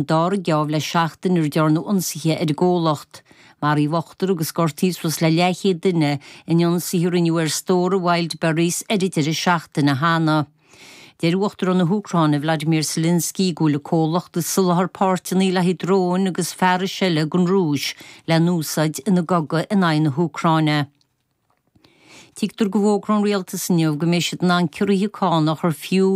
An dara geábh le seachtain a ndearnadh ionsaithe ar an gcomhlacht. Maraíodh ochtar agus gortaíodh suas le leathchéad duine in ionsaithe a rinneadh ar stórtha Wildberries ar an deireadh seachtaine cheana. Deir Uachtarán na hÚcráine Vladimir Zelensky go bhfuil an comhlacht ag soláthar páirteanna le haghaidh dróin agus fearais eile don Rúis le n-úsáid ina gcogadh in aghaidh na hÚcráine. Tuigtear go bhfógróidh an Rialtas inniu go mbeidh siad in ann ciorruithe cánach ar fiú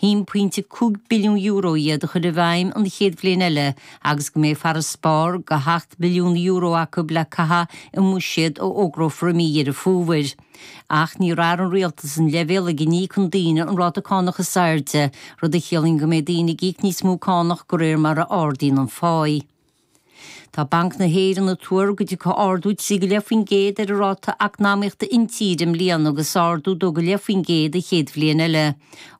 €1.5 billiún iad a chur i bhfeidhm an chéad bhliain eile agus go mbeidh farasbarr go €8 billiún acu le caitheamh i mbuiséad a fhógrófar i mí Dheireadh Fómhair. Ach ní athróidh an Rialtas an leibhéal ag a n-íocann daoine an ráta cánach is airde, rud a chiallaíonn go mbeidh daoine ag íoc níos mó cánach go réir mar a ardaíonn an pháigh. Tá Banc na hÉireann ag tuar go dtiocfaidh ardú trí go leith faoin gcéad ar an ráta eacnamaíochta intíre i mbliana agus ardú dó go leith faoin gcéad an chéad bhliain eile.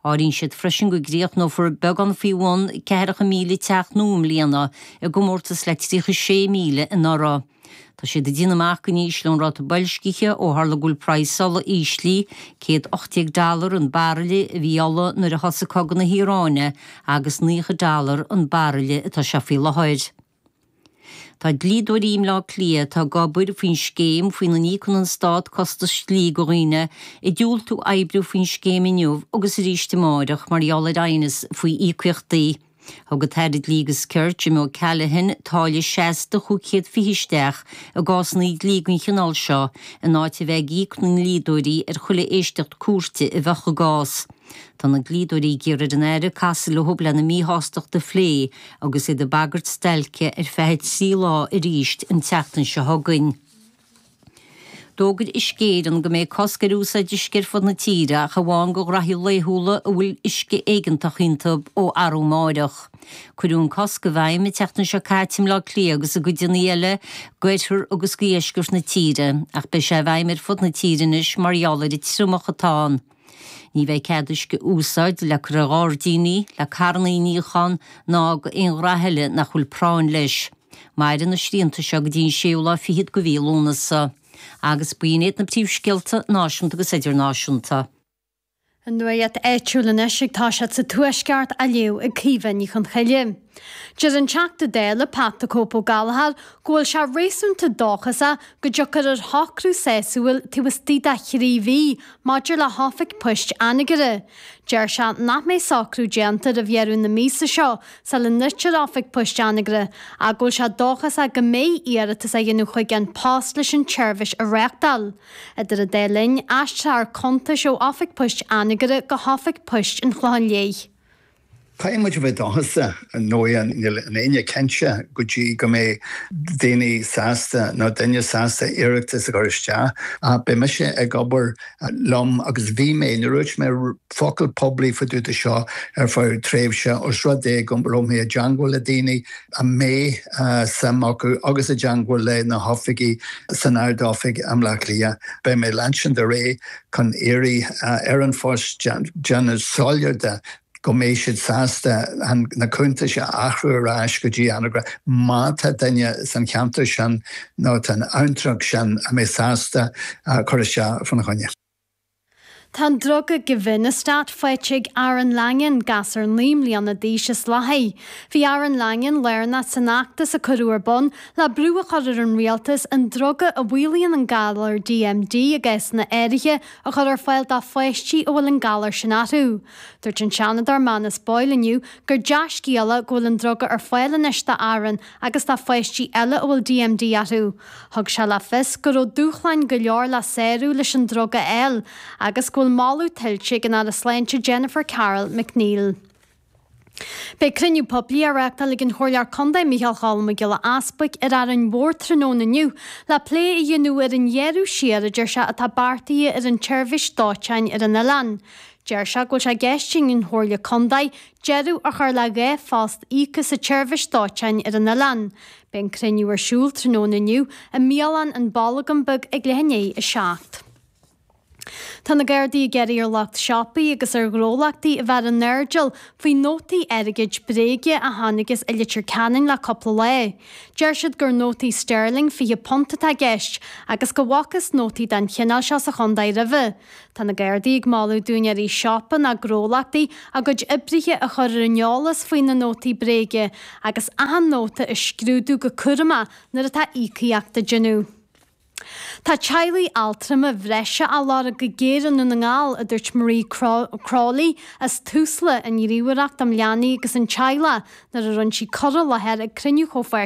Áiríonn siad freisin go gcríochnófar beagán faoi bhun ceathracha míle teach nua i mbliana, i gcomórtas le tríocha sé míle anuraidh. Tá siad ag déanamh amach go n-ísleoidh an ráta boilscithe ó tharla go bhfuil praghas ola íslithe, 118 dollar an baraille a bhí ola nuair a thosaigh cogadh na hIaráine agus 90 dollar an baraille atá sé faoi láthair. Tá dlíodóirí i mBleá Cliath atá ag obair faoin scéim faoina n-íocann an stát costais dlí do dhaoine ag diúltú oibriú faoin scéim inniu agus arís amárach mar gheall ar aighneas faoi íocaíochtaí Thug an tAire Dlí agus Cirt, Jim O Callaghan, táille seasta cúig chéad fiche isteach i gcásanna dlí den chineál seo, in áit a bheith ag íoc na ndlíodóirí ar chuile éisteacht cúirte a bheadh i gcás. Tá na dlíodóirí ag iarraidh ar an Aire casadh leo lena míshástacht a phlé agus iad ag bagairt stailce ar feadh trí lá arís an tseachtain seo chugainn. D'fhógair Uisce Éireann go mbeidh cosc ar úsáid uisce ar fud na tíre ach amháin go ghnaithí laethúla a bhfuil uisce éigeantach iontu ó arúamáireach. Cuireadh an cosc i bhfeidhm an tseachtain seo caite i mBleá Cliath agus i gcodanna eile d'oirthear agus dheisceart na tíre ach beidh sé i bhfeidhm ar fud na tíre anois mar gheall ar an triomach atá ann. Ní bheidh cead uisce a úsáid le cur ar ghairdíní, le carranna a níochán ná d'aon ghnaithe eile nach bhfuil práinn leis. Mairfidh na srianta seo go dtí an séú lá fichead go mhí Lúnasa. Agus b'in iad na príomhscéalta náisiúnta agus idirnáisiúnta. An nuacht áitiúil anois ag toiseacht sa tuaisceart á léamh ag Caoimhe Ní Chonchoille. Deir an Teachta Dála Pat the Cope Ó Gallchóir go bhfuil sé réasúnta dóchasach go dtiocfar ar shocrú sásúil taobh istigh de thrí mhí maidir le hoifig poist Anagaire. Deir sé nach mbeidh socrú déanta roimh dheireadh na míosa seo sula ndruidtear oifig poist Anagaire ach go bhfuil sé dóchasach go mbeidh iarratas á dhéanamh chuig An Post leis an tseirbhís a reachtáil. Idir an dá linn, aistreofar cuntais ó oifig poist Anagaire go hoifig poist an Chlochán Liath. Caithfidh muid a bheith dóchasach mar níl éinne cinnte go dtí go mbeidh daoine sásta nó duine sásta iarratas a chur isteach. Ach beidh mise ag obair liom agus bhí mé, níor dhúirt mé focal poiblí fá dtaobh de seo ar feadh tréimhse os rud é go raibh mé i dteangmháil le daoine a mbeadh suim acu agus i dteangmháil le na hoifigí san Ard-Oifig i mBleá Cliath. Beidh mé ag leanstan ar aghaidh chun iarraidh ar An Post déanamh soiléir de. go mbeidh siad sásta na cuntair a athrú ar ais go dtí Anagaire má tá duine san cheantar sin nó san abhantrach sin a bheadh sásta cur isteach fána choinne. Tá an druga Givinostat faighte ag Aaron Langan, gasur naoi mbliana d'aois as Lathaigh. Bhí Aaron Langan lárnach san fheachtas a cuireadh ar bun le brú a chur ar an rialtas an druga a mhaolaíonn an galar DMD ag aois áirithe a chur ar fáil do pháistí a bhfuil an galar sin orthu. Dúirt an Seanadóir Manus Boyle inniu gur dea-scéala é go bhfuil an druga ar fáil anois do Aaron agus do pháistí eile a bhfuil DMD orthu. Thug sé le fios go raibh dúshláin go leor le sárú leis an druga a fháil agus go bhfuil moladh tuillte ag an Aire Sláinte Jennifer Carroll MacNeill. Beidh cruinniú poiblí á reáchtáil ag an Chomhairleoir Contae Micheál Choilm Mac Giolla Easbuic ar Árainn Mhór tráthnóna inniu le plé a dhéanamh ar an ghearradh siar a deir sé atá beartaithe ar an tseirbhís dóiteáin ar an oileán. Deir sé go bhfuil sé i gceist ag an Chomhairle Contae deireadh a chur le dhá phost íoctha sa tseirbhís dóiteáin ar an oileán. Beidh an cruinniú ar siúl tráthnóna inniu i mbialann An Bolgán Beag ag leath i ndiaidh a seacht. Tá na Gardaí ag iarraidh ar lucht siopaí agus ar ghnólachtaí a bheith ar a n-airdeall faoi nótaí airgid bréige a tháinigtheas i Leitir Ceanainn le cúpla lá. Deir siad gur nótaí Sterling £20 atá i gceist agus go bhfacthas nótaí den chineál seo sa chontae roimhe. Tá na Gardaí ag moladh d'úinéirí siopa nó gnólachtaí a gcuid oibrithe a chur ar an eolas faoi na nótaí bréige agus achan nóta a scrúdú go cúramach nuair atá íocaíocht á déanamh. Tá teaghlaigh altrama bhreise á lorg go géar i nDún na nGall, a dúirt Marie Crowley as Tusla, an Ghníomhaireacht um Leanaí agus an Teaghlach, nuair a rinne sí cur i láthair ag cruinniú chomh